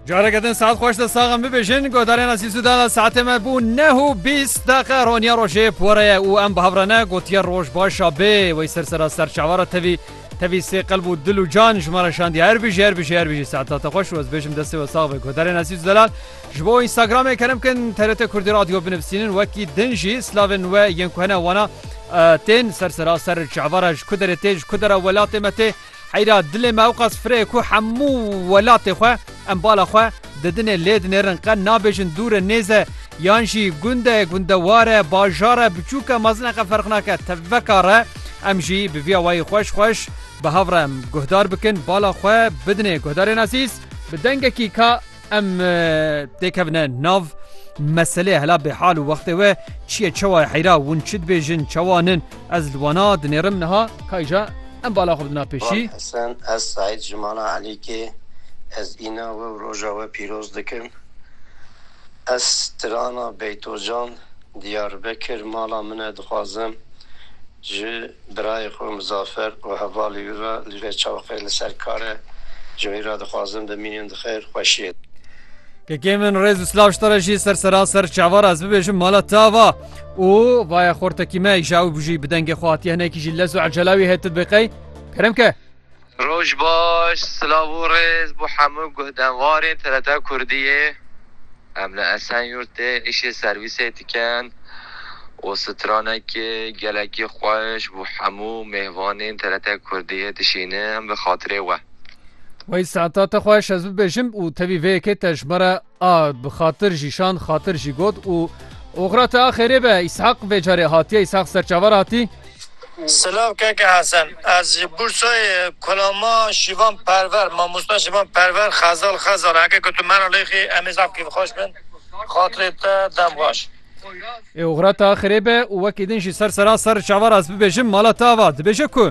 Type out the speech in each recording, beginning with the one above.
Careke din saet xweş de saxan bibêjin godarên asîsû dana saetê me bû neh û bîst deqe roniya rojê pore ye û em bihavrene gotiye roj başa bê wey ser sera ser çavara tevî tevî sê qelb û dil û can ji me re şandiye her bijî her bijî her bijî saeta te xweş û ez bêjim destê we sax be godarên asîsû delal ji bo Instagramê kerem kin TRT Kurdî radyo binivîsînin wekî din jî slavên we yên ku hene wana tên ser sera ser çavara ji ku derê tê ji ku dera welatê me tê Heyra dilê me ewqas firê ye ku hemû welatê xwe em bala xwe didinê lê dinêrin qe nabêjin dûr e nêz e yan jî gund e gundewar e bajar e biçûk e mezin e qe ferq nake tevveka re em jî bi vî awayî xweş xweş bi hev re em guhdar bikin bala xwe bidinê guhdarên asîs bi dengekî ka Em têkevine nav meselê hela bêhal û wextê we çiye çewa heyra win çi dibêjin çewa nin ez li wana dinêrim niha kayja em bala xwe bidina pêşî. Hesen ez Saîd ji mala Elîkê ez îna we û roja we pîroz dikim. Ez strana Beytocan Diyarbekir mala min e dixwazim ji birayê xwe Muzafer û hevalê wî re li vê çawqê li ser kar e ji wî re dixwazim bimînin di xêr xweşiyê de. Kekê min rêz û silav ji te re jî ser seraser çavar ez bibêjim mala te ava û vaye xortekî me îja û bijî bi dengê xwe hatiye hinekî jî lez û ecela wî hêt dibe qey kerem ke. Roj baş, silav û rêz bo hemû guhdenwarên TRT Kurdiyê. Em li Esenyurtê îşê servîsê dikin û stranekê gelekî xweş bo hemû mêvanên TRT Kurdiyê dişînim bi xatirê we. Wey saeta te xweş ez bibêjim û tevî vê yekê te ji me re. A bi xatir jî şand, xatir jî got û oxira te a xêrê be. Îshaq vê carê hatiye. Îshaq ser çavar hatî. Silav keke Hesen. Ez ji Bursayê Kulama Şîvan Perver, Mamosta Şîvan Perver, Xezal Xezal. Heke ku tu mera lê xî em ê zaf kêfxweş bin. Xatirê te dem baş. Ê oxira te a xêrê be û wekî din jî ser sera ser çavar ez bibêjim. Mala te ava dibêje ku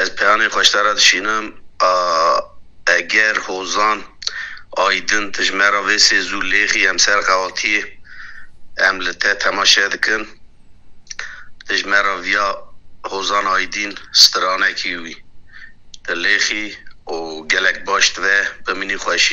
Ez peyanê xwe ji te re dişînim, a Eger, Hozan, Aydin tu ji me re vê sê zû lêxî em ser qewatiyê em li te temaşe dikin. Tu ji me re viya Hozan Aydin stranekî wî. Tu lêxî û gelek baş dibe bimînî xweşiyê.